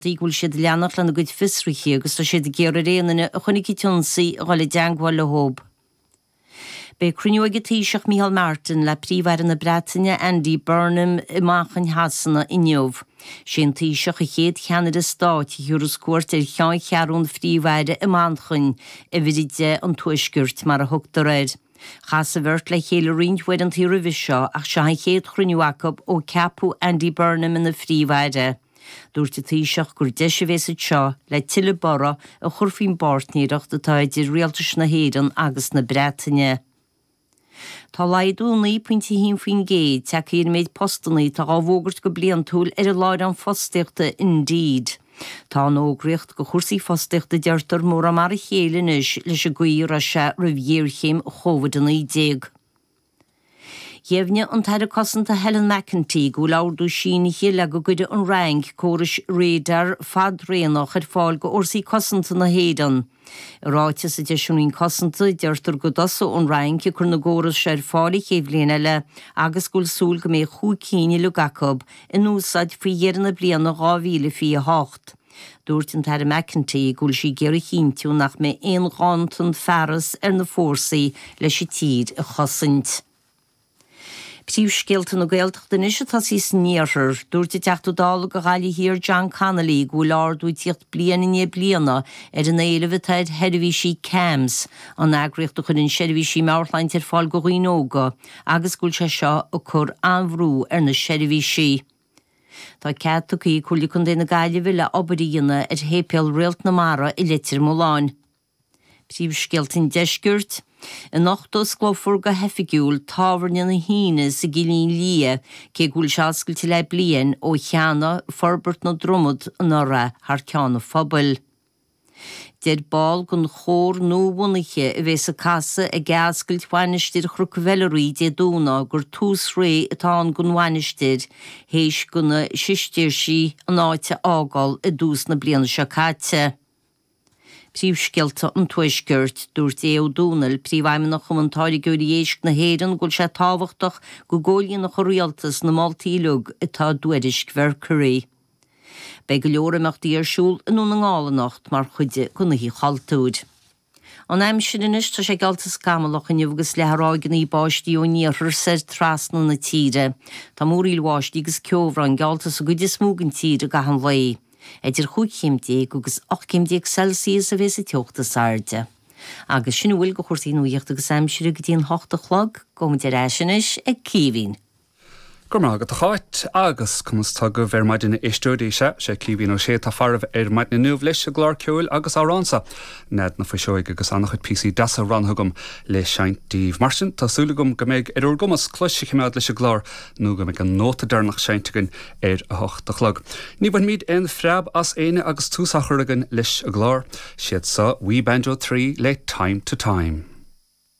dtí go bhfuil siad ag leanacht lena gcuid fiosruithe agus tá siad ag iarraidh ar aon duine a chonaic an t-ionsaí a dhul i dteangmháil leothab. Beidh cruinniú ag an Taoiseach Micheál Martin le Príomh-Aire na Breataine Andy Burnham i Manchain Shasana inniu. Is é an Taoiseach an chéad cheannaire stáit a thiúras cuairt ar cheanncheathrú an Phríomh-Aire i Manchain, uimhir 10 an Tuaiscirt mar a thugtar air. Chas an bheirt le chéile roinnt uaireantaí roimhe seo ach seo an chéad chruinniú acu ó ceapadh Andy Burnham ina Phríomh-Aire. Dúirt an Taoiseach gur deis a bheas anseo le tuilleadh borradh a chur faoin bpáirtnéireacht atá idir Rialtais na hÉireann agus na Breataine. Tá laghdú 9.1% tagtha ar an méid postanna atá á bhfógairt go bliantúil ar an láithreán fostaíochta Indeed. Tá an fhógraíocht do chúrsaí fostaíochta a deirtear mórán mar a chéile anois leis an gcaoi a raibh sé roimh ghéarchéim Covid-19. Dheimhnigh an tAire Cosanta Helen McEntee go bhfuil ordú sínithe le go gcuirfidh an Fhrainc córais radar fadraonach ar fáil do fhórsaí cosanta na hÉireann. I ráiteas a d'eisigh an Roinn Cosanta, deirtear go dtosóidh an Fhrainc ag cur na gcóras seo ar fáil an chéad bhliain eile agus go bhfuil súil go mbeidh cúig cinn uilig acu in úsáid faoi dheireadh na bliana 2028. Dúirt an tAire McEntee go bhfuil sí ag iarraidh a chinntiú nach mbeidh aon ghanntan fearas ar na fórsaí leis an tír a chosaint. Príomhscéalta na Gaeltachta anois ag tosaí san iarthar. Dúirt an Teachta Dála do Ghaillimh Thiar John Connolly go bhfuil ardú ag tíocht bliain i ndiaidh bliana ar an éileamh atá ar sheirbhísí CAMHS, an eagraíocht a chuireann seirbhísí meabhairshláinte ar fáil do dhaoine óga, agus go bhfuil sé seo ag cur an-bhrú ar na seirbhísí. Tá cead tugtha ag Comhairle Contae na Gaillimhe le obair a dhéanamh ar Shéipéal Réalt na Mara i Leitir Mealláin. Príomhscéalta an Deiscirt, Anocht osclófar go hoifigiúil Tábhairne na hUíne sa gCillín Liath, cé go bhfuil sé oscailte le bliain ó cheannaigh Forbairt na Dromoda anuraidh thar ceann an phobail. Deir ball den chór nuabhunaithe a bheas ag casadh ag athoscailt Mhainistir Chnoc Mheilearaí Dé Domhnaigh gur tús ré atá ann don mhainistir théis do na Sistéirsigh an áit a fhágáil i dtús na bliana seo caite. Príomhscéalta an Tuaiscirt. Dúirt Aodh Ó Domhnaill, Príomhfheidhmeannach Chumann Táirgeoirí Éisc na hÉireann, go bhfuil sé tábhachtach go gcomhlíonfadh an Rialtas na moltaí uilig atá i dtuairisc Mercury. Beidh go leor imeachtaí ar siúl i nDún na nGall anocht mar chuid den Oíche Chultúir. An aimsir anois, tá sé geallta scamallach inniu agus leathfaidh ráigeanna báistí ón iarthar soir trasna na tíre. Tá múraíl bháistí agus ceobhrán geallta sa gcuid is mó den tír i gcaitheamh an lae. Idir chúig chéim déag agus ocht gcéim déag Celsius a bhéas an teocht is airde. Agus sin a bhfuil de chúrsaí nuachta agus aimsire go dtí an hocht a chlog. Gabhfaidh muid ar ais anois ag Caoimhín. Go raibh maith agat a Cháit. Agus conas tánn sibh ar maidin a éisteoirí? Sea, sé Caoimhín Ó Sé atá faraibh ar maidin inniu leis a gclár ceoil agus amhrán so, Nead na Fuiseoige agus an-chuid píosaí deasa roghnaithe agam le seinnt daoibh. Mar sin, tá súil agam go mbeidh ar úr gcumas cluas a chimeád leis an gclár nó go mbeidh an nóta deireanach seinnte againn ar a hocht a chlog. Ní bhainfimid aon phreab as éinne agus tús á chur againn leis an gclár. Siad seo We Banjo Three le Time To Time.